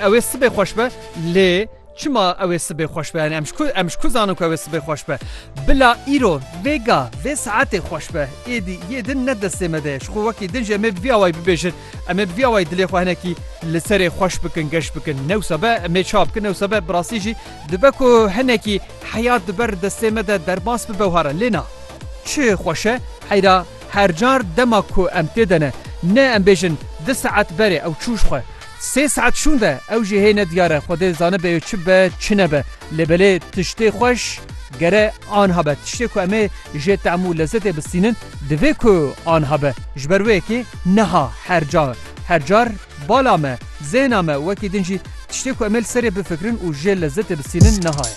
Ew ê sibê xweş be lê çima ew ê sibê xweş be? Yanî em ji ku em ji ku zanin ku ew ê sibê xweş be? Bila îro, vê ga, vê saetê xweş be. Êdî yê din ne destê me de ye. Ji xwe wekî din jî em ê bi vî awayî bibêjin. Em ê bi vî awayî dilê xwe hinekî li serê xweş bikin, geş bikin. Ne wisa be em ê çawa bikin? Ne wisa be bi rastî jî dibe ku hinekî heyat bi ber destê me de derbas bibe wiha re. Lê na. Çi xweş e? Heyra her car dema ku em tê de ne. Ne em bêjin di saet berê ew çû ji xwe. Sê saet şûn de ew jî hê nediyar e, Xwedê zanibê ew çi be çi nebe. Lê belê tiştê xweş gere anha be. Tiştê ku em ê jê tehm û lezetê bistînin divê ku anha be. Ji ber wê yekê niha her car her car bala me, zehna me wekî din jî tiştê ku em ê li serê bifikirin û jê lezetê bistînin niha ye.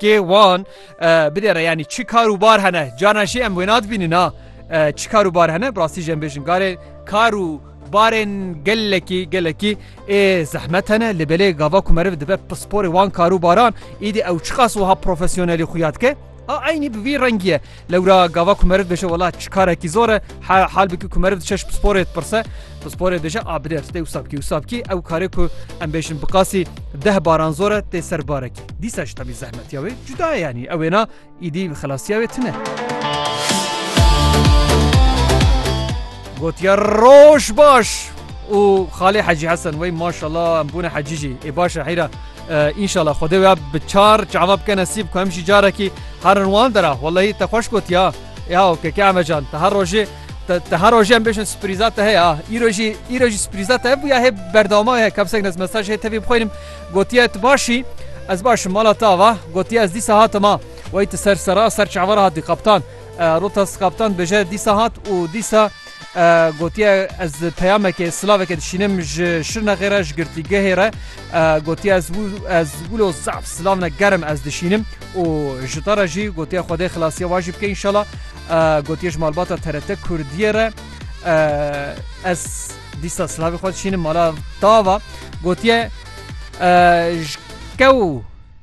Kê wan bidêre yanî çi kar û bar hene canan jî em wêna dibînin ha çi kar û bar hene bi rastî jî em bêjin garê kar û barên gelekî gelekî ê zehmet hene li belê gava ku meriv dibe pisporê wan kar û baran îdî ew çiqas wiha profesyonelî xuya dike a eynî bi vî rengiye Lewra gava ku meriv dibêje wela çi karekî zor e, hal bikî ku meriv diçe ji pisporê dipirse, pisporê dibêje a bilêr tê wisa bikî wisa bikî, ew karê ku em bêjin bi qasî deh baran zor e tê ser barekî. Dîsa ji tevî zehmetiya wê cuda ye yanî ew wêna îdî xelasiya wê tune. Gotiye roj baş û xalê Hecî Hesen wey maşala em bûne hecî jî ê baş e heyra. Înşala Xwedê wê bi çar çava bike nesîb ku em jî carekî herin wan dera Wellahî te xweş gotiya ya ke ke emecan te her rojê te her rojê em bêjin sprîza te heye îro jî îro jî sprîza te bûye hê berdewama heye kevsek nez mesaj hê tevî bixwînim gotiye tu başî ez başim mala te ava gotiye ez dîsa hatima wey tu ser sera ser çava hatî kaptan rotas kaptan bêje dîsa hat û dîsa Gotiye ez peyamekê silavekê dişînim ji Şirnexê re ji girtîgehê re gotiye ez ez wilo zaf silavne gerim ez dişînim û ji te re jî gotiye xwedê xilasiye wa jî bike înşala gotiye ji malbata TRT Kurdiyê re ez dîsa silavê xwe dişînim mala dava gotiye ji kew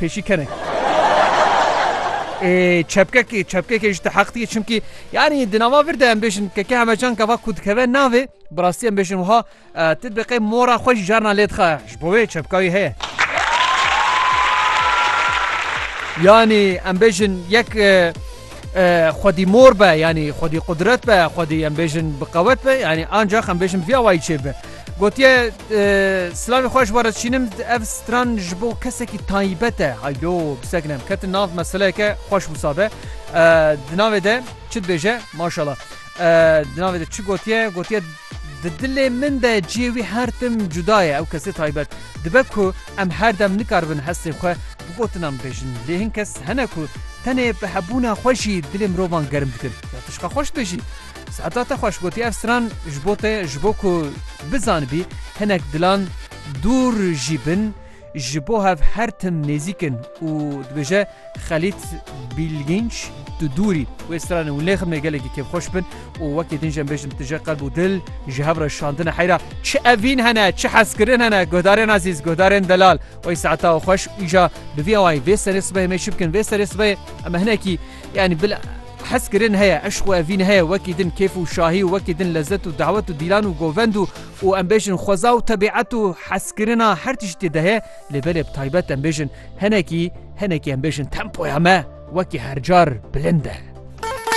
Pêşî kenek. çepkekê çepkekê ji te heq diye çimkî yanî di nava vir de em bêjin keke hemecan kava ku dikeve navê bi rastî em bêjin wiha tu biqê mora xwe jî carna lê dixe ji bo wê çepka wî heye yanî em bêjin yek xwedî mor be yanî xwedî qudret be xwedî em bêjin bi qewet be yanî ancax em bêjin vî awayî çê be Gotiye, Silavê xwe ji we re dişînim, ev stran ji bo kesekî taybet e. Haydo, pisek nem, ketin nav meseleyeke xweş wisa be. Di navê de çi dibêje? Maşala. Di navê de çi gotiye? Gotiye di dilê min de cihê wî her tim cuda ye, ew kesê taybet. Dibe ku em her dem nikaribin hestê xwe bi gotinan bibêjin. Lê hin kes hene ku tenê bi hebûna xwe jî dilê mirovan germ dikin. Ya tu ji xwe xweş dibêjî. Siheta te xweş gotî ev stran ji bo te ji bo ku bizanibî hinek dilan dûr jî bin ji bo hev her tim nêzîk in û dibêje Xelît Bîlgînç tu dûr î. Wê stranê hûn lê xidmê gelekî kêfxweş bin û wekî din jî em bêjin tije qelb û dil ji hev re şandine heyra çi evîn hene çi hezkirin hene guhdarên ezîz guhdarên delal wey siheta xweş îja bi vî awayî vê serê sibehê me çi bikin vê serê sibehê em hinekî Yanî bila hes kirin heye, eşq û evîn heye, wekî din kêf û şahî û wekî din lezet û dawet û dîlan û govend û û em bêjin xweza û tebîet û heskirina her tiştî de heye lê belê bi taybet em bêjin hinekî hinekî em bêjin tempoya me wekî her car bilind e.